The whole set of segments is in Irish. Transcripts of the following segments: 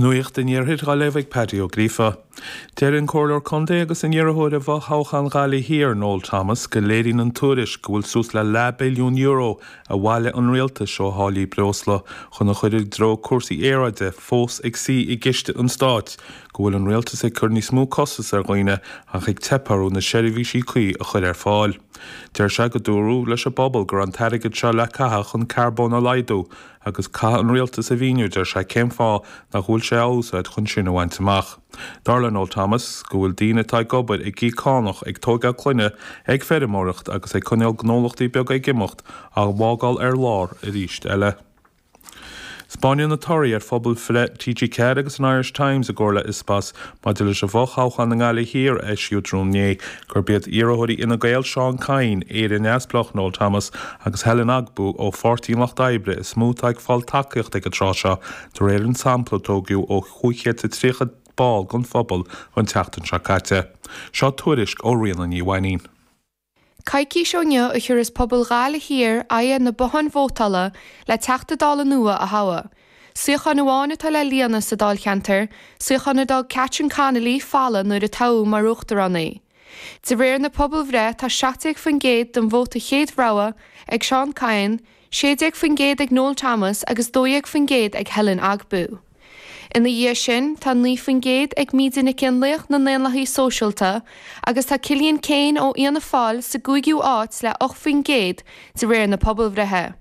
Nuacht an Iarthair á léamh ag Paddy Ó Gríofa. Deir an Comhairleoir Contae agus an iarrthóir i bhfothoghchán Ghaillimh Thiar Noel Thomas go léiríonn an tuairisc go bhfuil suas le leath billiún euro a bhailigh an Rialtas ó tháillí breosla chun a chuir i dtreo cúrsaí aeráide fós ag suí i gciste an Stáit go bhfuil an Rialtas ag cur níos mó costas ar dhaoine ach ag teip orthu na seirbhísí cuí a chuir ar fáil. Deir sé go dúradh leis an bpobal go raibh an t-airgead seo le caitheadh chun carbón a laghdú Agus caithfidh an rialtas a mhíniú, deir sé, cén fáth nach bhfuil sé á úsáid chun sin a bhaint amach. Dar le Noel Thomas go bhfuil daoine atá ag obair ag íoc cánach, ag tóigeáil clainne, ag feirmeoireacht agus ag coinneáil gnólachtaí beaga ag imeacht á bhfágáil ar lár arís eile. Spáineann na torthaí ar phobalbhreith TG4 agus an Irish Times i gcomhar le Ipsos maidir leis an bhfo-thoghchán i nGaillimh Thiar a eisíodh tráthnóna inné gurb iad iarrthóirí Fhine Gael, Seán Kyne, Éire Neamhspleách, Noel Thomas, agus Helen Ogbu ó Pháirtí an Lucht Oibre is mó atá ag fáil tacaíochta ag an tráth seo, de réir an tsampla a tógadh ó chúig chéad is a tríocha ball den phobal an tseachtain seo caite. Seo tuairisc ó Ríona Ní Mhainín. Coicís ó inniu a thiúras pobal Ghaillimh Thiar aghaidh ar na botháin vótála le Teachta Dála nua a thoghadh. Suíochán amháin atá le líonadh sa dáilcheantar, suíochán a d'fhág Catherine Connolly folamh nuair a toghadh mar uachtarán í. De réir na pobalbhreith tá 17% den vóta chéad rogha ag Seán Kyne, 16% ag Noel Thomas agus 12% ag Helen Ogbu. Ina dhiaidh sin tá 9% ag Míde Nic Fhionnlaoich na nDaonlathaithe Sóisialta agus tá Cillian Keane ó Fhianna Fáil sa gcúigiú áit le 8% de réir na pobalbhreithe.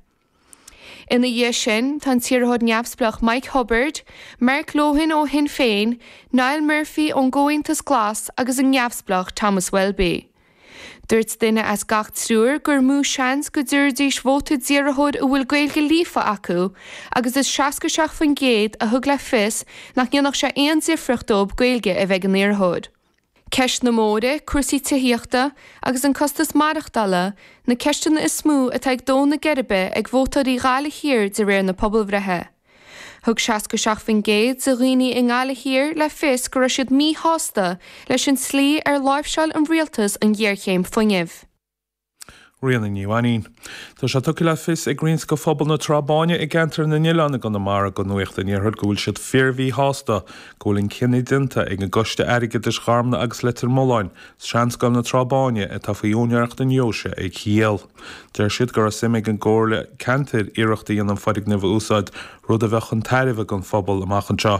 Ina dhiaidh sin, tá an t-iarrthóir neamhspleách Mike Cubbard, Mark Lohan ó Shinn Féin, Niall Murphy ón gComhaontas Glas agus an neamhspleách Thomas Welby. Dúirt duine as gach triúr gur mó seans go dtabharfaidís vóta d'iarrthóir a bhfuil Gaeilge líofa acu agus is 67% a thug le fios nach ndéanfadh sé aon difríocht dóibh Gaeilge a bheith ag an iarrthóir. Ceist na mbóithre, cúrsaí tithíochta agus an costas maireachtála, na ceisteanna is mó atá ag dó na geirbe ag vótóirí Ghaillimh Thiar de réir na pobalbhreithe. Thug 67% de dhaoine i nGaillimh Thiar le fios go raibh siad míshásta leis an tslí ar láimhseáil an rialtas an ghéarchéim fuinnimh. Ríona Ní Mhainín. Tá sé tugtha le fios ag roinnt de phobal na Trá Báine i gceantar na nOileán i gConamara go Nuacht an Iarthair go bhfuil siad fíormhíshásta go bhfuil an cinneadh déanta ag an gCoiste Airgeadais Gharmna agus Leitir Mealláin, Seanscoil na Trá Báine atá faoi úinéireacht na deoise a dhíol. Deir siad go raibh suim ag an gComhairle Ceantair iarracht a dhéanamh an foirgneamh a úsáid, rud a bheadh chun tairbhe don phobal amach anseo.